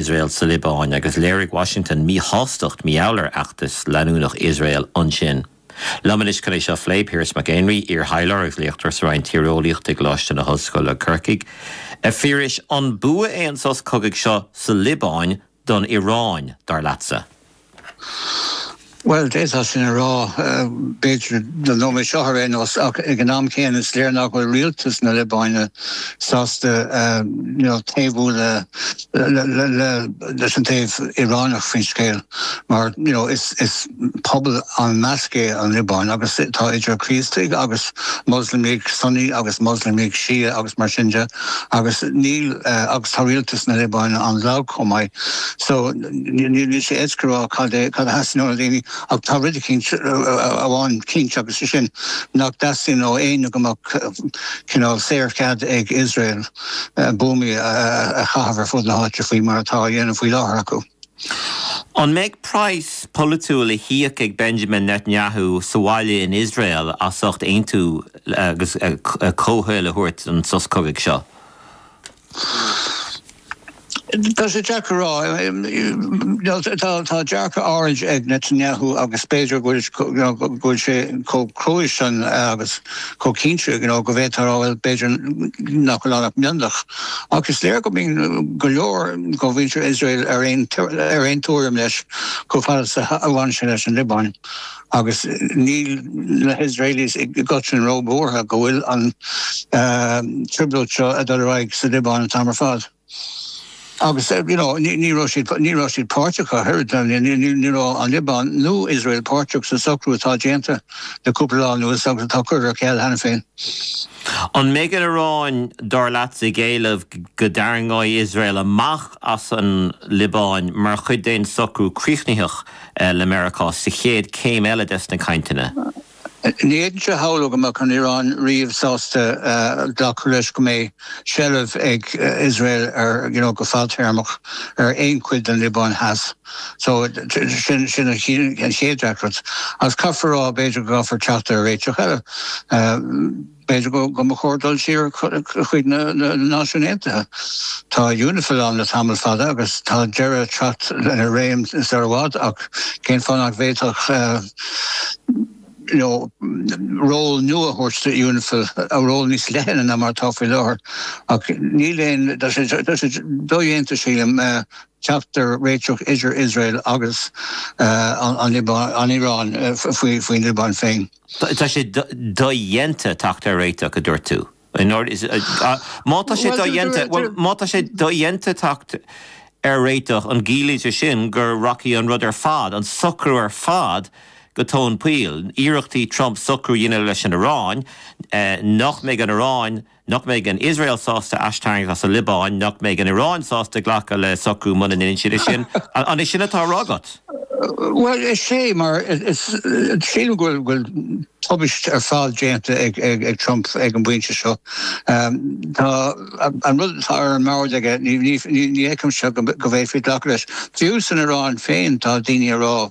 Iosrael sa Liobáin, agus léirigh Washington míshástacht mar gheall ar fheachtas leanúnach Iosrael ansin. Liom anois chun é seo a phlé, Piaras Mac Éinrí, iar-thaidhleoir agus léachtóir sa Roinn Tíreolaíochta i gColáiste na hOllscoile, Corcaigh, A Phiarais, an bua é an sos cogaidh seo sa Liobáin don Iaráin, dar leatsa? Bhuel, d'fhéadfá sin a rá, b'fhéidir, don nóiméad seo ar aon nós, ach ag an am céanna is léir nach bhfuil rialtas na Liobáine sásta taobhú leis an taobh Iaráineach faoin scéal, mar is pobal an-mheasctha é an Liobáin agus tá idir Críostaigh agus Moslamaigh Sunni agus Moslamaigh Shia agus mar sin de. agus níl, agus tá rialtas na Liobáine an-lag chomh maith, so níl níl sé éasca a rá cad é, cad a theastaíonn ó na daoine ach tá rud eicínt, amháin cinnte agus sé sin nach dteastaíonn ó éinne go mbeadh cineál saorchead ag Iosrael buamaí a chaitheamh ar fud na háite faoi mar atá á dhéanamh faoi láthair acu. An mbeidh praghas polaitiúil le híoc ag Benjamin Netanyahu sa bhaile in Iosrael as ucht aontú agus comhthoil a thabhairt don sos cogaidh seo? Tá sé deacair a rá. Tá dearcadh áirid ag Netanyahu agus b'fhéidir go bhfuil sé chomh cruaidh sin agus. chomh cinnte you know go bhféadfá a rá bhuel b'fhéidir nach bhfuil ann ach mionlach ach is léir go mbíonn go leor de mhuintir Iosrael ar aon ar aon tuairim leis chomh fada is a bhaineann sé leis an Liobáin agus níl na hIosraelis i gcoitinn róbhuartha go bhfuil an trioblóid seo ag dul ar aghaidh sa Liobáin an t-am ar fad. Agus you know ní raibh siad, ní raibh siad páirteach ach oiread, ní raibh an Liobáin nó Iosrael páirteach sa socrú atá déanta le cúpla lá anuas agus atá curtha ar ceal cheana féin. An mbeidh an Iaráin, dar leatsa, ag éileamh go dtarraingeoidh Iosrael amach as an Liobáin mar chuid d'aon socrú críochnaitheach le Meiriceá sa chéad céim eile des na cainteanna? Ní fhéadfainnse a shamhlú go mbeadh an Iaráin riamh sásta glacadh leis go mbeidh seilbh ag Iosrael ar, you know, go fadtéarmach ar aon chuid den Liobáin Theas. So, sin an chéad deacracht. Agus caithfear a rá, b'fhéidir go gcaithfear teacht ar réiteach eile. B'fhéidir go mba chóir dul siar chuig na Náisiúin Aontaithe. Tá Unifil ann le tamall fada agus tá deireadh ag teacht lena réim sar i bhfad ach cén fáth nach bhféadfadh ról nua a thabhairt do Unifil, ról níos leithne ná mar atá faoi láthair? Ach níl aon, tá sé dodhéanta sílim, teacht ar réiteach idir Iosrael agus an Iaráin faoin Liobáin féin. Tá sé dodhéanta teacht ar réiteach, a dúirt tú. Má tá sé dodhéanta, má tá sé dodhéanta teacht ar réiteach, an gciallaíonn sé sin go rachaidh an rud ar fad, an socrú ar fad, go tóin poill? Iarrachtaí Trump socrú a dhéanamh leis an Iaráin, nach mbeidh an Iaráin, Nach mbeidh an Iosrael sásta aistarraingt as an Liobáin? Nach mbeidh an Iaráin sásta glacadh le socrú muna ndeineann siad é sin? An é sin atá á rá agat? Bhuel, is é, mar sílim go bhfuil tubaist ar fad déanta ag Trump ag an bpointe seo. Tá an rud atá ar an mbord aige, ní fheicimse go bhféadfaí glacadh leis. Fiú san Iaráin féin, tá daoine ag rá,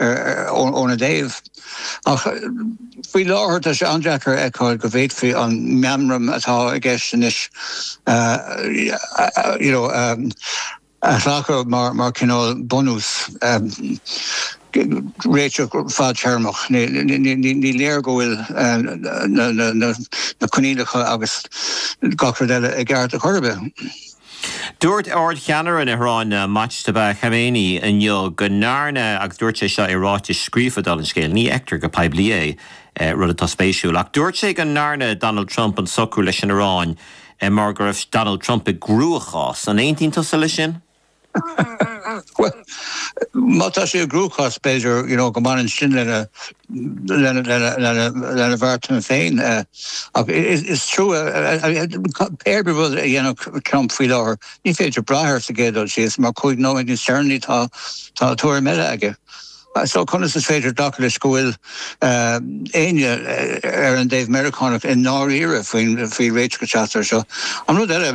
óna dtaobh. Ach faoi láthair tá sé an-deacair a fheiceáil go bhféadfaí an meamram atá i gceist anois, you know, a ghlacadh mar chineál bunús réiteach fadtéarmach. Ní léir go bhfuil na coinníollacha agus gach rud eile i gceart ar chor ar bith. Dúirt Ard-Cheannaire na hIaráine, Mojtaba Khamenei, inniu go ndearna, agus dúirt sé seo i ráiteas scríofa, dála an scéil, ní fheictear go poiblí é, rud atá spéisiúil, ach dúirt sé go ndearna Donald Trump an socrú leis an Iaráin mar go raibh Donald Trump i gcruachás. An aontaíonn tusa leis sin? Bhuel, má tá sé i gcruachás, b'fhéidir, you know, go mbaineann sin lena lena bheartanna féin. Ach is trua, pé ar bith rud a dhéanfadh Trump faoi láthair, ní féidir brath air sa gcéad dul síos, mar cúig nóiméad níos deireanaí tá tuairim eile aige. So conas is féidir glacadh leis go bhfuil éinne ar an dtaobh Meiriceánach i ndáiríre faoi faoi réiteach a theacht air seo? An rud eile,